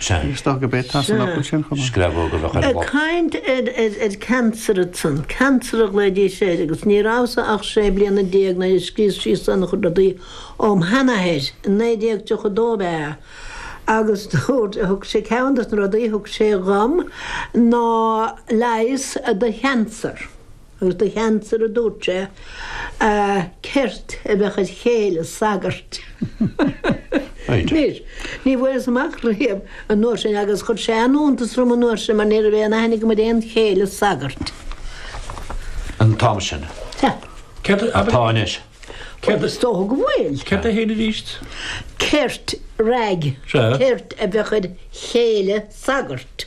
Is dócha go b'é tá san fhocal sin chomh maith. Screabóg a bheadh ar an bpota. Caint ar cancer ansan. Cancer a ghlaoidís air agus ní rabhas-sa ach sé bliana déag nuair a scríos síos an-chuid rudaí óm sheanathair, i 1932 ab ea, agus dúirt, thug sé, ceann de na rudaí thug sé dhom ná leigheas do chancer. Agus do chancer a dúirt sé, a ceirt a bheadh id chéile sagairt. Anois, ní bhfuaireas amach riamh an uair sin agus chuir sé an-iontas orm an uair sin mar ní raibh aon aithne agam ar aon chéile sagairt. an t-am sin. Céard a. atá anois. Céard a. Is dócha go bhfuil. Céard a théid aríst? Ceirt, rag, Sea. ceirt a bheadh id chéile sagairt.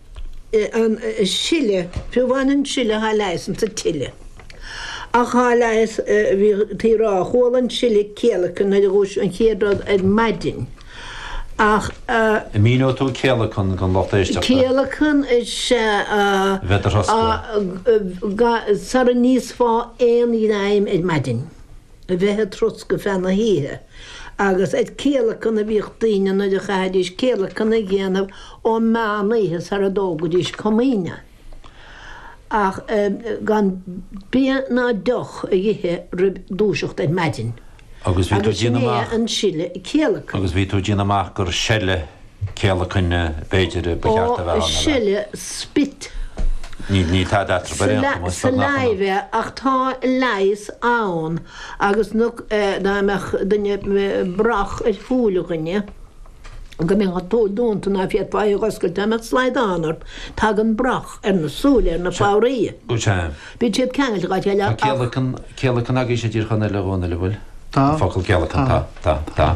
an sile, fiú amháin an sile thá leigheas insa tsile. Ach thá leigheas, bhítí a rá, chuala an sile céalacan nuair a dhúisigh an chéad rud ar maidin. Ach. An míneoidh tú céalacan don lucht éisteachta? Céalacan is ea. Bheith do throscadh. Sara n-íosfá aon ghreim ar maidin. a bheith ag troscadh feadh na hoíche, agus ag céalacan a bhíodh daoine nuair a chaithfidís céalacan a dhéanamh ó mheán oíche sar a dtógaidís Comaoine, ach gan bia ná deoch a dh'ithe roimh dúiseacht ar maidin. Agus bhí tú ag déanamh amach. Agus sin é an sile céalacan. Agus bhí tú ag déanamh amach gur seile céalacain b'fhéidir a ba cheart a bheith ann, ar a. spit. Níl tada eatarthu ar aon chuma, is beag nach ionann. saliva ach tá leigheas ann agus dá mbeadh duine brach ar shúil dhuine go mbeadh an tsúil dúnta ná féadfá í dh'oscailt dá mbeadh slaghdán ort tagann brach ar na súile ar na fabhraí. Bíonn siad ceangailte dhá chéile ach. Tá céalacan agaibhse i dTír Chonaill a Dhomhnaill, an bhfuil? Tá. An focal céalacan, tá, tá, tá.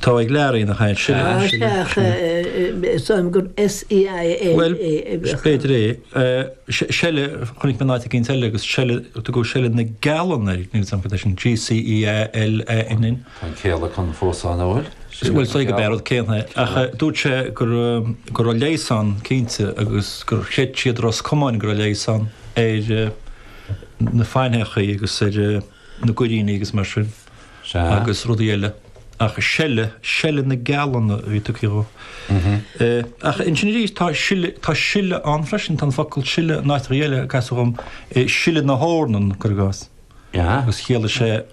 Tá ag learaí ina chaint sin. Tá, sin é. Ach is dóigh liom gur seile. Bhuel, b'fhéidir é. Seile, chonaic mé in áit éicint eile agus seile, tugadh seile na gcealann air, níl 'fhios a'm cad é sin, G-c-e-a-l-a-n-n. Tá an céalacan fós ann, an bhfuil? Bhuel, is féidir go b'é an rud céanna é. Ach dúirt sé go raibh, go raibh leigheas ann cinnte agus gur chreid siad i Ros Comáin go raibh leigheas ann ar na faithneachaí agus ar, na goiríní agus mar sin agus rudaí eile ach seile, seile na gcealann a bhí tugtha dhó. Ach ansin arís tá sil, tá sile ann freisin, tá an focal sile in áiteacha eile a casadh dhom, sile na hEornan, cuir i gcás, agus chiallaigh sé,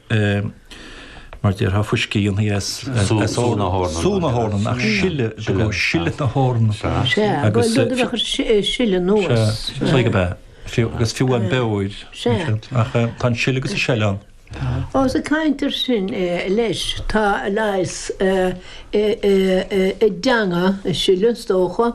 mar déarfá, fuiscí a dhéanfaí as, as sú na hEornan, sú na hEornan, ach sile, sile na hEornan, agus, Sea, bhuel, rud a bheadh ag sileadh anuas. Sea, slag ab ea. Fiú agus fiú an beoir, ansiúd. Ach tá an sileadh agus an seile ann. Tá. Os ag caint ar sin, leis, tá a leigheas i dteanga an tseile, is dócha.